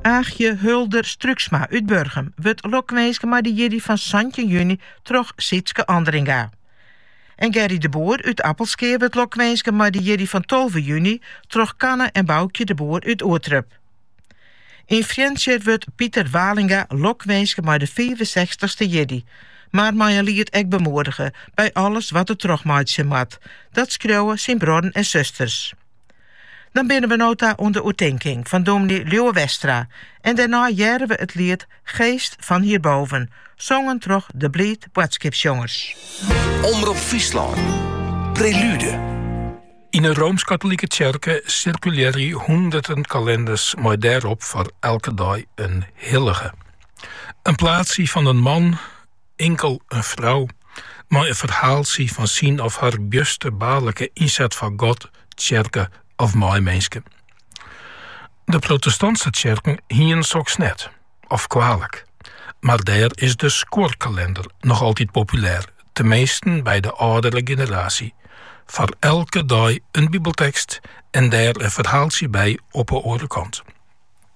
Aagje Hulder Struiksma út Burgum wurdt lokwinske mei de jierdei fan santjin juny troch Sietske Andringa. En Gerry de Boer út Appelskea wurdt lokwinske mei de jierdei fan tolve juny troch Kanne en Boukje de Boer út Oerterp. Yn Frjentsjer wurdt Piter Walinga lokwinske mei de fiifensechstichste jierdei, mar mei in liet ek bemoedige by alles wat er trochmeitsje moat. Dat skriuwe syn bruorren en susters. Dan binne we no ta oan de oertinking fan dominee Liuwe Westra en dêrnei hearre we it liet Geest van hierboven, songen troch De Bliid Boadskipsjongers. Omrop Fryslân, Prelude. Yn 'e Roomsk-Katolike Tsjerke sirkulearje hûnderten kalenders mei dêrop foar elke dei in hillige. In plaatsje fan in man. Inkel in frou mei in ferhaaltsje fan syn of har bjusterbaarlike ynset foar God, tsjerke of meiminske. De protestantske tsjerken hienen soks net, of koalik, mar dêr is de skuorkalender noch altyd populêr, teminsten by de âldere generaasje. Foar elke dei in bibeltekst en dêr in ferhaaltsje by op 'e oare kant.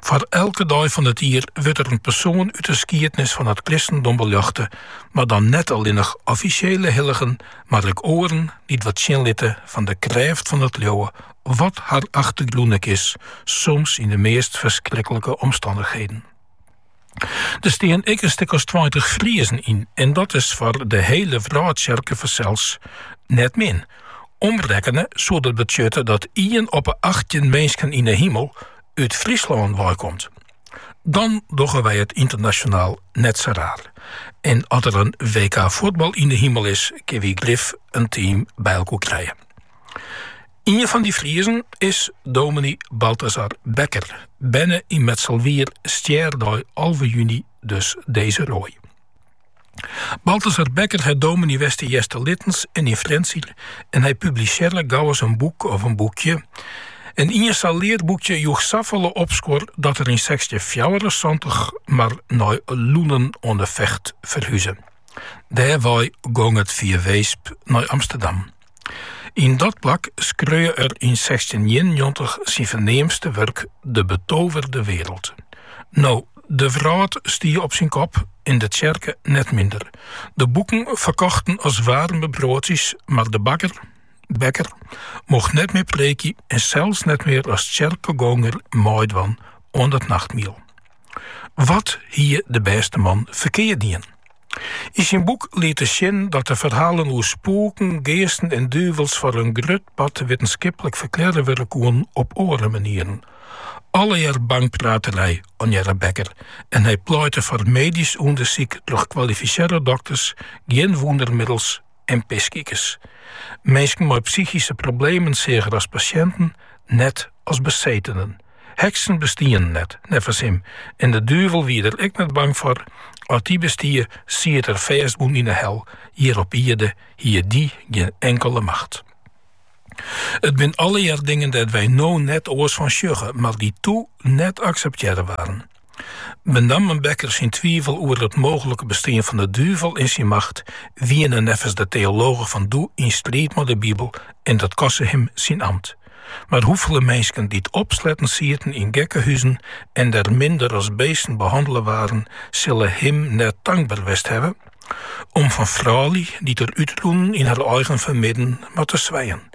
Foar elke dei fan it jier wurdt der in persoan út de skiednis fan it kristendom beljochte, mar dan net allinnich offisjele hilligen, mar ek oaren dy't wat sjen litte fan de krêft fan it leauwe, wat har achtergrûn ek is, soms yn de meast ferskrikkelike omstannichheden. Der stean ek in stik as tweintich Friezen yn en dat is foar de hiele wrâldtsjerke fansels net min. Omrekkene soe dat betsjutte dat ien op 'e achttjin minsken yn 'e himel út Fryslân weikomt. Dan dogge wy it ynternasjonaal net sa raar. En as der in WK fuotbal yn 'e himel is, kinne wy grif in team by elkoar krije. Ien fan dy Friezen is dominee Balthasar Bekker, berne yn Mitselwier, stjerdei alve juny dus deze rooi. Balthasar Bekker hat dominee west yn Easterlittens en yn Frjentsjer en hy publisearre gauris in boek of in boekje. En ien sa'n learboekje joech safolle opskuor dat er yn sechstjinfjouwerensantich mar nei Loenen oan de Vecht ferhuze. Dêr wei gong it fia Weesp nei Amsterdam. Yn dat plak skreau er yn sechstjinhûndertienennjoggentich syn ferneamste wurk De betoverde wereld. No, de wrâld stie op syn kop en de tsjerke net minder. De boeken ferkochten as waarme broadsjes, mar de bakker, Bekker, mocht net mear preekje en sels net mear as tsjerkegonger meidwaan oan it nachtmiel. Wat hie de bêste man ferkeard dien? Yn syn boek liet er sjen dat de ferhalen oer spûken, geasten en duvels foar in grut part wittenskiplik ferklearre wurde koene op oare manieren. Allegear bangpraterij, ornearre Bekker, en hy pleitte foar medysk ûndersyk troch kwalifisearre dokters, gjin wûndermiddels, en pisykers. Minsken mei psychyske problemen seach er as pasjinten, net as besetenen. Heksen bestienen net, neffens him, en de duvel wied er ek net bang foar, as dy bestie, siet er fêstbûn yn 'e hel, hjir op ierde hie dy gjin inkele macht. It binne allegear dingen dêr't wy no net oars fan sjogge, mar dy't doe net akseptearre waarden. Benammen Bekker syn twivel oer it mooglike bestean fan de duvel en syn macht wiene neffens de teologen fan doe yn striid mei de Bibel en dat koste him syn amt. Mar hoefolle minsken dy't opsletten sieten yn gekkehuzen en der minder as beesten behannele waarden, sille him net tankber west hawwe om fan froulju dy't er útrûnen yn har eigen fermidden, mar te swijen.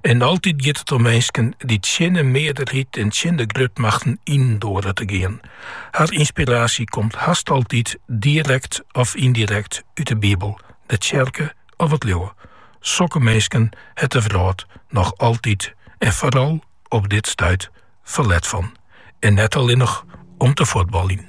En altyd giet it om minsken dy't tsjin de mearderheid en tsjin de grutmachten yn doare te gean. Har ynspiraasje komt hast altyd direkt of yndirekt út de Bibel, de tsjerke of it leauwe. Sokke minsken hat de wrâld noch altyd en foaral op dit stuit ferlet fan. En net allinnich om te fuotballjen.